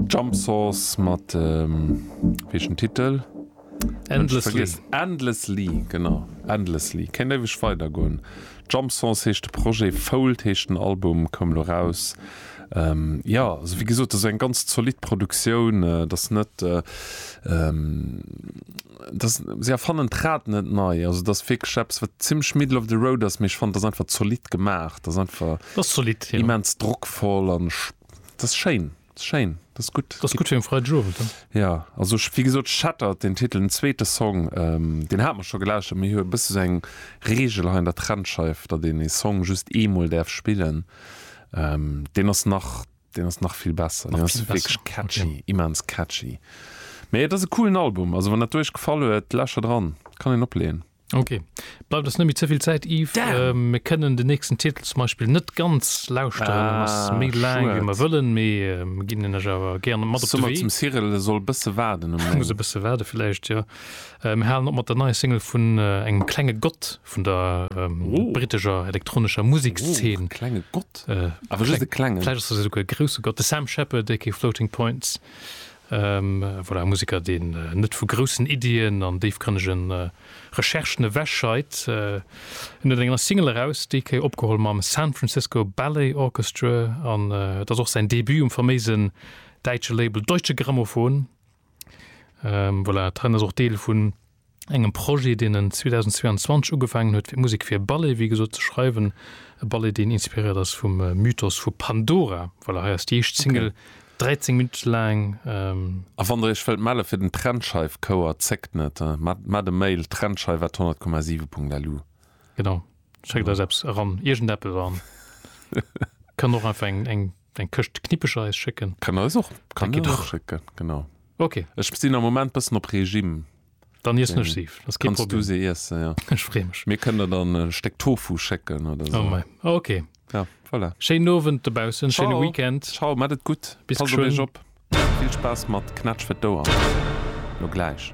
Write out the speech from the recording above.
Jump Source mat ähm, weechen Titel? Endlessly. Endlessly genau Endlessly Kéint éiweg weider goen. Jump Source heescht de Projet, Fold heescht den Album, koum lo raus. Ähm, ja also wéi gesot ass eng ganz zolidd Produktioun, äh, et ass net äh, ähm, dass se erfannen d'Rad net nei, also dass wierklech eppes wat zimmlech middle of the road ass, mee ech fannen dass einfach zolidd gemaach, dass einfach dass zolidd, ja. immens drockvoll an ech dass schéin, dass schéin, dass gutt. Dass gutt fir en Freidegowend, ja. Ja, also ech wéi gesot Shattered den Titel, den zweete Song, deen hat mer scho gelauschtert, mee hu e bësse sou eng Reegel hei an der Trennscheif, datt een ee Song just eemol däerf spillen, deen ass nach. Deen ass nach vill besser, deen ass wierklech catchy, immens catchy. Mee et ass e coolen Album, also wann dat Iech gefall huet, läscher dran, kann een opleeën. Ok, bleift ons net méi ze vill Zäit iww. Damn! Mir kënnen den nächsten Titel zum Beispill net ganz lauschteren, en ass Ah, méi laang wéi mir schued. wëllen, mee mir ginn en Iech awer gären mat op Soe de mer Wee. zum Cyril, e soll e bësse waarden um Muss e Lénk. bësse waarde villäicht, jo. Mir halen op mat der neier Single vun engem klenge Gott vun der britescher elektronescher Musekszeen. Klenge Gott? Awer just e klengen? Vläicht ass dat esouguer e grousse Gott. De Sam Shepherd, aka Floating Points, voilà, e Museker, deen net vu groussen Iddien an déifgrënnege Recherchen ewech scheit. En huet eng nei Single eraus, déi Kéier opgeholl mam San Francisco Ballet Orchestra, an et ass och säin Debut um faméisen däitsche Label Deutsche Grammophon. Ähm voilà, et ren ass och Deel vun engem Projet, deen en 2022 ugefaangen huet, fir Musek fir e Ballet, wéi gesot, ze schreiwen. E Ballet, deen inspiréiert ass vum Mythos vu Pandora. Voilà, hei ass déi éischt Single, 13 Minutte laang. Ähm. A wann der Iech wëllt melle fir den Trennscheif-Chouer, zéckt net, mat e Mail, trennscheif at 100,7 Punkt LU. Genau, schéckt eis eppes eran, iergendeppes, an kann och einfach eng, eng. eng Këscht Knippecher eis schécken. Kann der eis och, kann der eis schécken, genau. Ok. Ech sinn am Moment bëssen op Regime. Dann iessen ech si, ass kee Problem. Kanns du se iessen, jo. Ech free mech. Mir kënnen der dann e Stéck Tofu schécken oder sou. Oh mei, ok. Ja, voilà. Schéinen Owend dobaussen, schéine Weekend. Ciao, ciao, mat et gutt. Bis geschwënn. Passt op iech op. Vill Spaass mat Knätsch fir d'Ouer. Lo gläich.